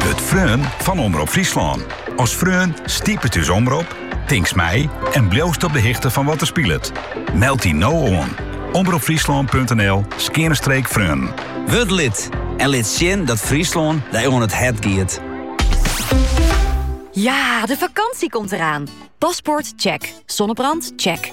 Wurd freon fan Omrop Fryslân. As freon stipet ús omrop, tinkst mei en bliuwst op de hichte fan wat der spilet. Meld dy no oan, omropfryslân.nl skeane streek freon. Wurd lid en lit sjen dat Fryslân dy oan it hert giet. Ja, de fakânsje komt eraan! Paspoort? Check. Sonnebrand? Check.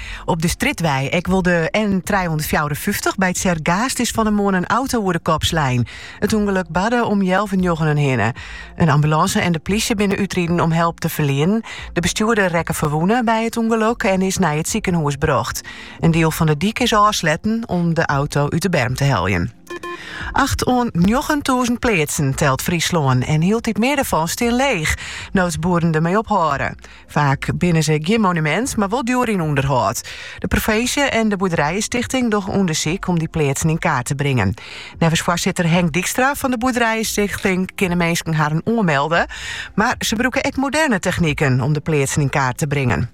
Op de Stritwei, ek wol de N354, by Tsergaast is fan 'e moarn in auto oer de kop slein. It ûngelok barde om healwennjoggenen hinne. In ambulânse en de plysje binne útriden om help te ferlienen. De bestjoerder rekke ferwûne by it ûngelok en is nei it sikehûs brocht. In diel fan de dyk is ôfsletten om de auto út de berm te heljen. Acht oant njoggentûzen pleatsen telt Fryslân en hieltyd mear derfan stean leech, no't boeren dermee ophâlde. Faak binne se gjin monumint, mar wol djoer yn ûnderhâld. De provinsje en de boerderijestichting dogge ûndersyk om dy pleatsen yn kaart te bringen. Neffens foarsitter Henk Dykstra fan de boerderijestichting kinne minsken harren oanmelde, mar se brûke ek moderne techniken om de pleatsen yn kaart te bringen.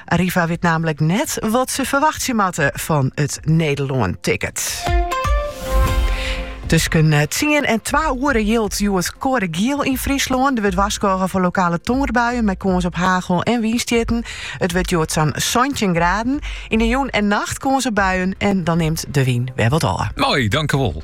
Arriva wit namelijk net wat se ferwachtsje moatte fan it Nederlân-ticket. Tusken tsien en twa oere jild hjoed koade giel yn Fryslân. Der wurdt warskôge foar lokale tongerbuien mei kâns op hagel en wynstjitten. It wurdt hjoed sa'n 17 graden. Yn de jûn en nacht kâns op buien en dan nimt de wyn wer wat ôf. Mooi, tankewol.